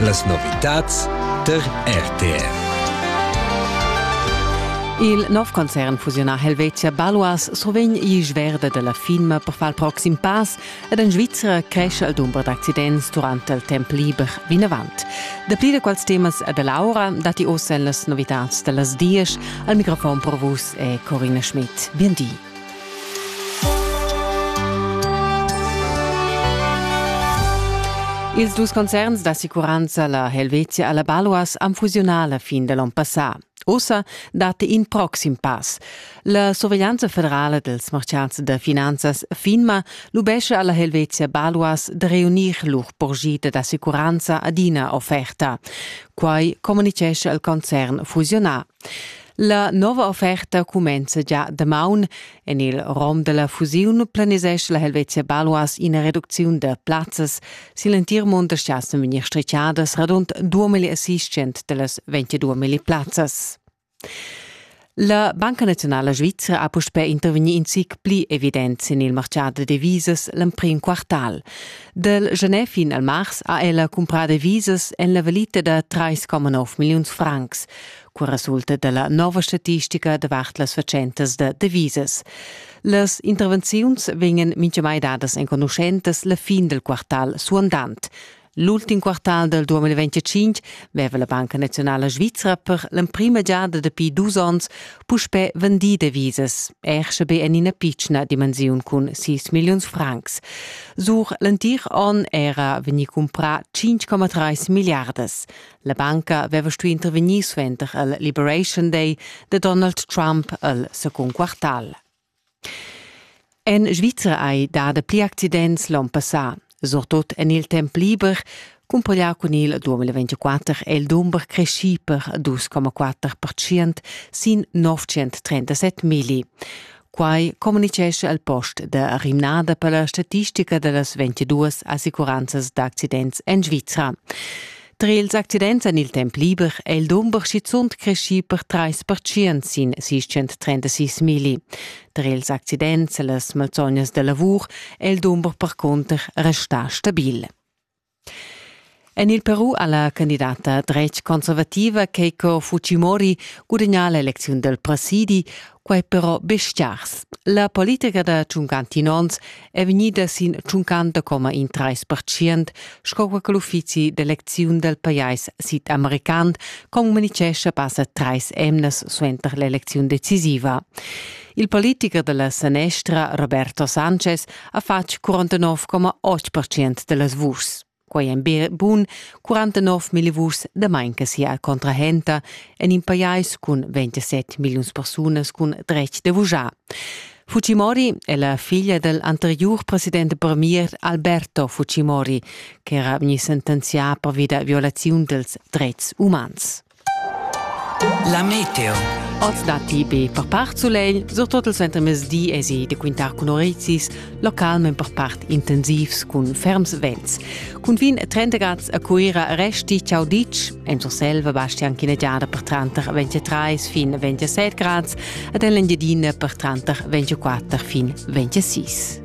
Las novitads der RTR. Il nov concern fusiunà Helvetia Baluas survegn isch verde dalla firma per far il proxim pass ed en Svizra cresce il dumber d'accidents durante il temp liber vinavant. Dapli da quals temas e dell'aura datti ossa las novitads dallas dies. Al microfon per vus è Corina Schmidt. Bien di. Ils dus concerns d'assicuranza, la Helvetia e la Balois, han fusiunà la fin dell'on passà. Ussa dat in proxim pass. La surveglianza federala dels marchats da finanzas FINMA lubesce alla Helvetia Balois de reunir lur porgita d'assicuranza adina offerta. Quai communicesce al concern fusionar La nova offerta cumenza già damaun. En il rom della fusiun planisesch la Helvetia Baluas ina reducziun da plazzas. Si l'entir mund schassen vegnir stricadas radund 2000 assistent dellas 22.000 plazzas. La Banca Nazionale Svizzera ha puspè intervegnì in zic pli evident sin il martgà da devisas l'emprim quartal. Dal Genève fin al mars ha ella cumprà devisas en la valita da 3,9 milliuns francs. Qua resulta dalla nova statistica davart las fatschentas da devisas. Las intervenziuns vegnan mintgamai dadas enconuschentas la fin del quartal suandant. L'ultim quartal del 2025 veva la Banca Nazionala Svizra per l'emprima giada dapi dus onns puspè vendì devisas, er sche be en ina pitschna dimensiun cun 6 milliuns francs. Sur l'entir onn era vegnì cumprà 5,3 milliardas. La banca aveva stuì intervegnir suenter il Liberation Day da Donald Trump el secund quartal. En Svizra hai dà pli accidents l'onn passà, surtut en il temp liber, cumpaglià cun il 2024 è il dumber creschì per 2,4 sin 937 milli. Quai communitgescha il post da rimnada per la statistica da las 22 assicuranzas d'accidents en Svizra. Tra ils accidents en il temp liber è il dumber schizunt creschì per trais pertschient sin 636 milli. Tra ils accidents e las malsognas da lavur è il dumber percunter restà stabil. En il Peru ha la candidata dretg-conservativa Keiko Fujimori gudagnà l'elecziun dal presidi, quai però be stgars. La politica da tschuncanti nons è vegnida sin tschuncanta coma in trais percient, sco che l'uffizi d'elecziun dal pajais sid-american comunichescha passa trais emnas suenter l'elecziun decisiva. Il politicher da la sanestra Roberto Sanchez ha fatg 49,8% dellas vuschs. Quei ein bun 49 million vuschs damain che sia contrahenta en in pajais cun 27 milliuns persunas cun dretg de vuschar. Fujimori è la figlia del anterior presidente premier Alberto Fujimori, che era vegni sentenzià per via da violazione dels drets umans. La meteo. Oz datti be per part sulegl, surtut il suentermezdi èsi da quintar cun orezis, local men per part intensivs cun ferms vents. Cun fin 30 grads a Cuira resti ciao ditg, en Surselva basti anche una giada per tranter 23 fin 27 grads ed en l'Engiadina per tranter 24 fin 26.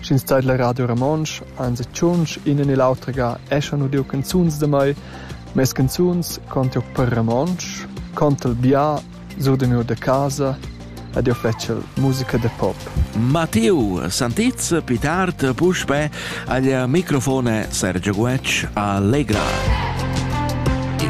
sch'ins taidla Radio Romontsch, ans e tschunsch ina ni l'autra ga eschan udiu canzuns da mei, mes canzuns contiu per romontsch, contel bia, surdemiu da casa ed io fetschel musica da pop. Matteo Santez pitart puspè agl microfone Sergio Guec Allegra.